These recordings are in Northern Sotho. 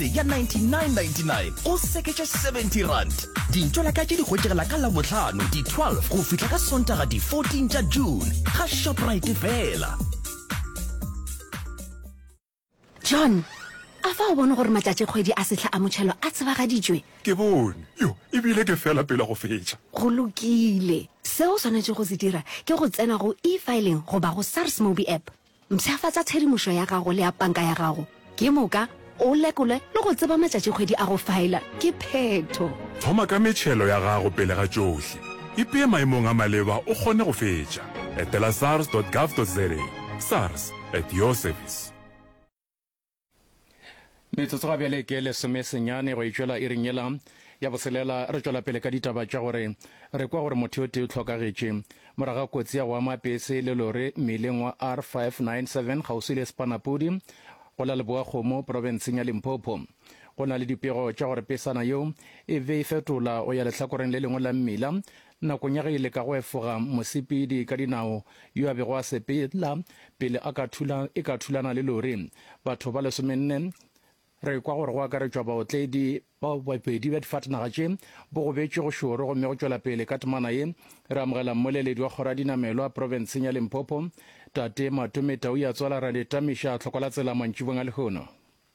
tšhelete ya 99.99 go seketšwa 70 rand dintšo la ka tše di hwetšegela ka labohlano di 12 go fihla ka sontaga di 14 tša june ga shoprite fela john a fa o bone gore matšatšikgwedi a sehla a motšhelo a tsebagaditšwe ke bone yo ebile ke fela pele go fetša go lokile seo o swanetše go se dira ke go tsena go e-filing goba go sars mobi app Mpshafatša tshedimošo ya gago le ya panka ya gago ke moka, o lekolwe le go tseba matšatšikgwedi a go faela ke phetho. Thoma ka metšhelo ya gago pele ga tšohle. Ipee maemong a maleba o kgone go fetša. Etela sars dot gov dot za, sars, at your service. metsotso ga bjale ke lesome senyane go itšwela e rinyela ya boselela re tšwela pele ka ditaba tša gore re kwa gore motho yo tee o tlhokagetše moraga kotsi ya go ama pese le lore mmileng wa r 597 kgauswi le sepanapudi go la leboa kgomo porofenseng ya limpopo go na le dipego tša gore pesana yeo e be e fetola go ya lehlakoreng le lengwe la mmila Nakong ya ge e le ka go efoga mosepedi ka dinao yo a bego a sepela pele a ka thula e ka thulana le lori, batho ba lesomenne, re kwa gore go akaretšwa baotledi ba babedi bja difatanaga tše, bo gobetšwe go šoro gomme go tšwela pele ka temana ye. Re amogela mmoleledi wa kgoro ya dinamelwa profenseng ya Limpopo, Tate Matome Tau ya tswala ra le tamiša tlhoko la tsela mantšibong a lehono.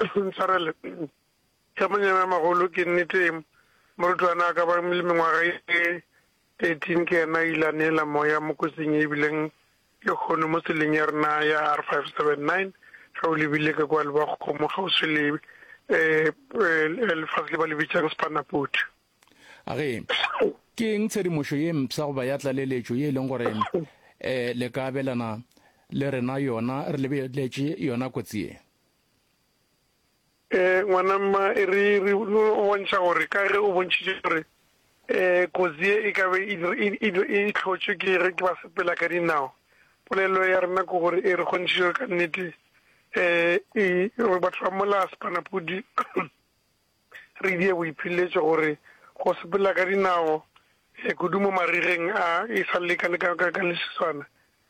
Ntshwarele, hle Monyamemagolo, ke nnete morutwana a ka ba le mengwaga e 13 ke yena a ile a neela moya mo kotsing ye e bileng le kgono mo tseleng ya rena ya R 579 ge o lebile ka kwa Lebakgomo kgauswi le lefase le ba le bitšang Spanapoti. A re, Ke eng tshedimošo ye mpsha goba ya tlaleletšo ye e leng gore le ka abelana le rena yona re lebeletše yona kotsi ye? E, ngwana mma, e re re bontšha gore ka ge o bontšhitše gore e kotsi ye e ka be e hlotšwe ke ge ke ba sepela ka dinao, polelo ya rena ke gore e re kgontšhitše gore ka nnete e batho ba mola Spanapudi. Re die boiphiletšo gore go sepela ka dinao, kudu mo marigeng a e sa lekane ka leswiswana.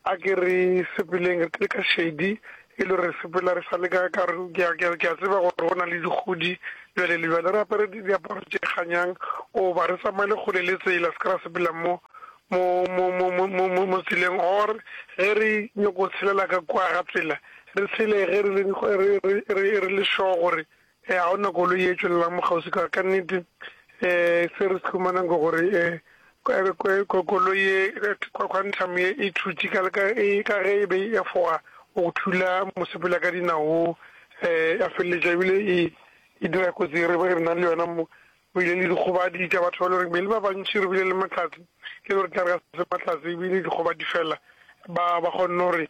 A ke re sepeleng re le ka šedi, e le gore re sepela re sa le ka, ka gore ke a, ke a, ke a tseba gore go na le dikgodi bjale le bjale. Re apare diaparo tše kganyang goba re tsamaele kgole le tsela, se ke ra sepela mo, mo, mo, mo, mo, mo, mo, mo tseleng. Or ge re nyoko tshelela ka kua ga tsela, re tshele ge re le, re, re, re, re le sure gore. Ee, ga ona koloi e tšwelelang mokgauswi ka, ka nnete um se re se humanang ke gore um koloi e quantum ye e thutše ka ka ge e be e efoga go thula mosepela ka dinao wo um ya feleletša ebile e e dira kotsi e re re na le yona mo go ile le dikgobadi tša batho ba le gore be le ba bantši re bile le matlhatse le gore tla re ga se matlhatse ebile dikgobadi fela ba ba kgonne gore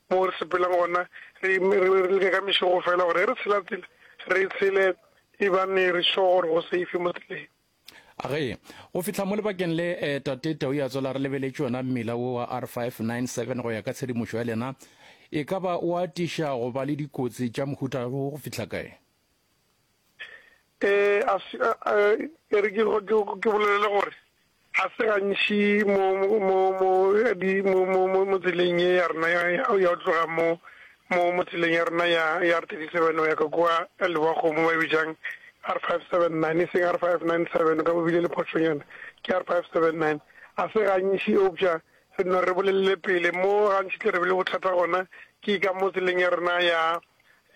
Moo re sepelang gona, re re leke ka mešogo fela gore ge re tshela tsela, re tshele e bane re sure gore go safe mo tseleng. Age, go fihla mo lebakeng le, eh, Tate Tau ya tswela re lebeletše yona mmila wo wa R597 go ya ka tshedimošo ya lena. E ka ba o atiša go ba le dikotsi tša mohuta wo go fihla kae? E, a se, a, a, e re ke, ke, ke bolelele gore ga se gantši mo, mo, mo, di, mo, mo, mo, mo tseleng ye ya rena ya, ya go tloga mo, mo, mo tseleng ya rena ya, ya R thirty seven go ya ka kua Lebakgomo ba e bitšang R five seven nine, e seng R five nine seven, o ka bo bile le phošonyana, ke R five seven nine. Ga se gantši eupša re no re bolelele pele mo gantši tle re be le bothata gona ke ka mo tseleng ya rena ya,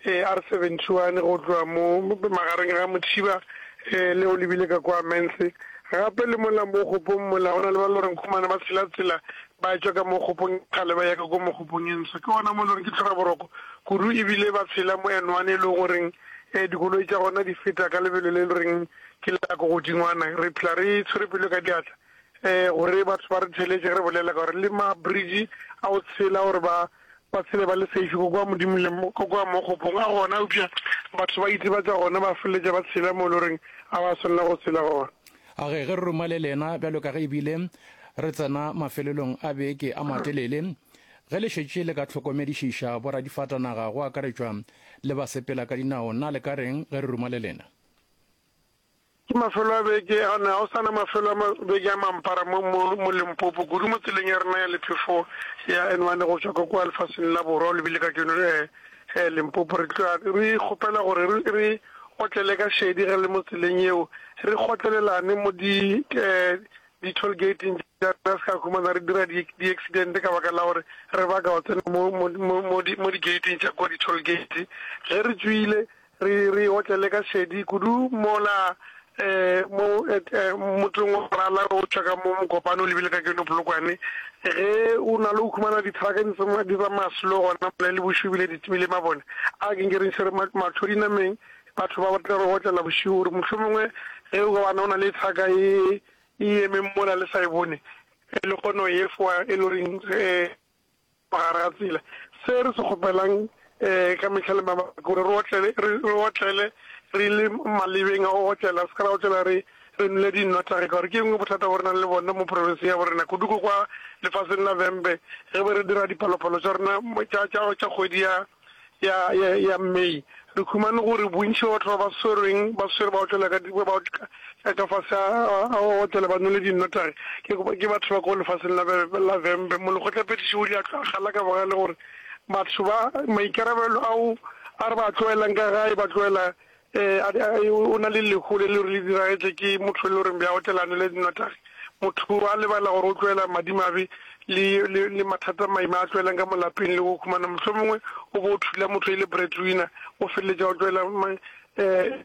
AR 71 go tloga mo magareng ga Motšhiba le o lebile ka kwa Mens. Gape le mola mo kgopong mola go na le ba loreng khumane ba tshela tsela ba tšwa ka mo kgopong e kgale ba ya ka kwa mo kgopong e nswa ke gona mo loreng ke tlhoka boroko kudu e bile ba tshela mo N one e le goreng dikoloi tša gona di feta ka lebelo le loreng ke la ko godingwana re phela re tshwere pelo ka diatla um gore batho ba re theletše re bolela ka gore le mabridge a o tshela gore ba ba tshele ba le safe ko kwa modimo le ko kwa mo kgopong a gona eupša batho ba itebatša gona ba feleletša ba tshela mo e le goreng a ba swanela go tshela gona a ge ge re ruma le lena bjalo ka ge ebile re tsena mafelelong a beke a matelele ge le šetše le ka tlhokomedišiša boradifatanaga go akaretšwa le basepela ka dinao na le ka reng ge re ruma le lena Ke mafelo a beke a ne a o sa na mafelo a beke a mampara mo, mo, mo Limpopo, kudu mo tseleng ya rena ya lephefo ya N one go tšwa ka kua lefaseng la borwa, o lebile ka keno eh, eh, Limpopo. Re tloga re kgopela gore re, re otlele ka šedi ge le mo tseleng yeo, re gotlelelane mo di, eh, di-toll gating tša rena, re se ka humana re dira di, di-accident ka baka la gore re baka go tsena mo, mo, mo, mo di, mo di-gating tša kua di-toll gate. Ge re tšwile Re re otlele ka šedi kudu mola mo motseng wa Morala re otšwa ka mo Mokopane o lebile ka keno Polokwane ge o na le go humana dithraka di tsamaya di tsa maslo gona mola le bošego ebile di timile mabone a ke nke re ntshe matlho dinameng batho ba tle re otlela bošego gore mohlomongwe ge o ka bana o na le thraka e e emeng mola le sa e bone le kgono e fowa e loreng Fa gare ga tsela, se re se kgopelang ka mehla le mabaka ke gore re otlele, re otlele re le malebeng a go otlela, re se ka ra otlela re re nwele dinnotagi. Ka gore ke engwe bothata bo re nang le bone mo profenseng ya borena, kudu ko kwa lefaseng la Vhembe, ge be re dira dipalopalo tša rena tša, tša, tša kgwedi ya. ya, ya, ya May, re humane gore bontši bja batho ba ba swerweng ba swere ba otlela ka, ba ba, ka, ka, ka fase a, a, a otlela ba nwele dinnotagi, ke, ke batho ba ko lefaseng la, la Vhembe. Molekgotlaphethiši o ile a tloga a gala ka bogale gore batho ba, maikarabelo ao a re ba a tloelang ka gae, ba tloela Ee, a, a, o na le lehu le le le diragetše ke motho le gore bja otlelane le notagi. Motho a lebala gore o tloela madimabe le, le, le mathata maima a tloelang ka molapeng le go humana. Mohlomongwe o bo o thula motho e le breadwinner, o feleletša o tloela ma, eh,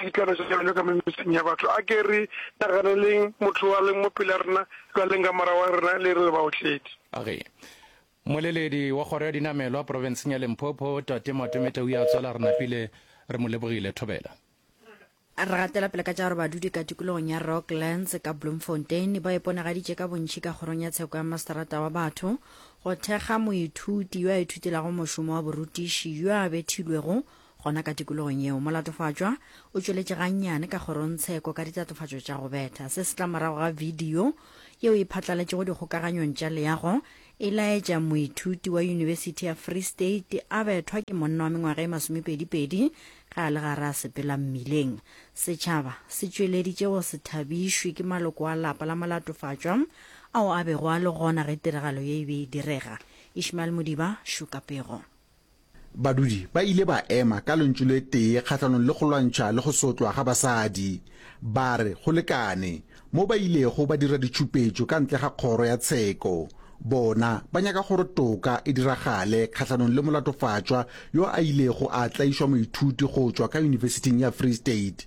ditlwana tša bjalo ka metseng ya batho. A ke re naganeleng motho a leng mo pela rena, bjaleng ka morago ga rena le re le baotledi. A re, Moleledi wa kgoro ya dinamelwa profenseng ya Limpopo, Tate Matometa o ile a tswela re napile re mo lebogile. Thobela. Re gatela pele ka tša gore badudi ka tikologong ya Rocklands ka Bloemfontein ba iponagaditše ka bontši ka kgorong ya tsheko ya Masterata wa Batho go thekga moithuti yo a ithutelago mošomo wa borutiši yo a bethilwego Gona ka tikologong yeo, molatofatšwa o tšweletše gannyane ka kgorongtsheko ka ditatofatšo tša go betha. Se se tla morago ga bidio yeo e phatlaletšego dikgokaganyong tša leago e laetša moithuti wa Yunibesithi ya Free State a bethwa ke monna wa mengwaga e masomepedipedi ge a le gare a sepela mmileng. Setšhaba se tšweleditše go se thabišwe ke maloko a lapa la molatofatšwa ao a bego a le gona ge tiragalo ye e be e direga. Ishmael Modiba, Šuka Pego. Badudi ba ile ba ema ka lentšu le tee kgahlanong le go lwantšha le go sotlwa ga basadi. Ba re go lekane, mo ba ilego ba dira ditšhupetšo ka ntle ga kgoro ya tsheko. Bona ba nyaka gore toka e diragale kgahlanong le molatofatšwa yo a ilego a tlaišwa moithuti go tšwa ka yunibesiting ya Free State.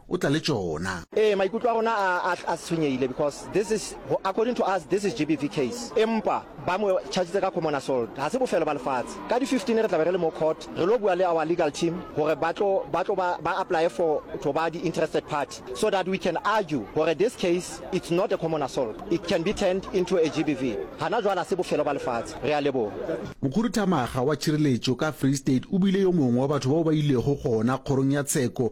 O tla le tšona. Ee, maikutlo a rona a, a, a tshwenyehile because this is, according to us, this is GBV case. Empa, ba mo chargitse ka common assault. Ha se bofelo ba lefatshe. Ka di 15 re tla be re le mo court, re lo bua le our legal team hore ba tlo, ba tlo ba, ba apply-e for tlo ba di interested party so that we can argue hore this case, it's not a common assault. It can be turned into a GBV. Hana jwale ha se bofelo ba lefatshe. Re a leboha. Mokhuduthamaga wa tšhireletšo ka Free State o bile yo mongwe wa batho bao ba ilego gona kgorong ya tsheko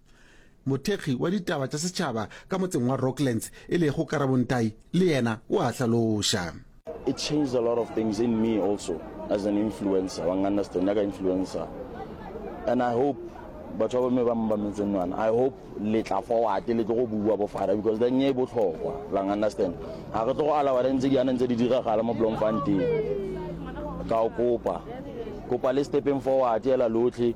Mothekgi wa ditaba tša setšhaba ka motseng wa Rocklands e lego Karabontai le yena o a hlaloša. It changed a lot of things in me also as an influencer. Wa understand ya ka influencer. And I hope batho ba bomme ba mbametseng nwana. I hope le tla forward le tlo go bua bo fara because the nye e botlhokwa. La understand. Ha re tlo go alawa re ntse di ana ntse di diragala mo Bloemfontein. Ka o kopa. Kopa le stepping forward ela lotlhe.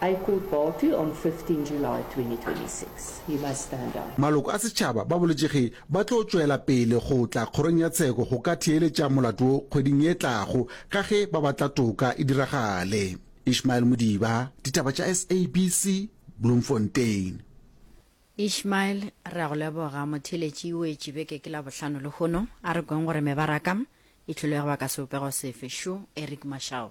I called Barkley on 15 July 2026. He must stand down. Maloko a setšhaba ba boletše ge ba tlo tšwela pele go tla kgorong ya tsheko go ka theeletša molato wo kgweding ye tlago ka ge ba batla toka e diragale. Ishmael Modiba, Ditaba tša SABC, Bloemfontein. Ishmael, re a go leboga. Motheeletši o etše beke ke Labohlano lehono. A re kweng gore mebaraka e hlolege baka sebopego sefe. Shu, Eric Mashau.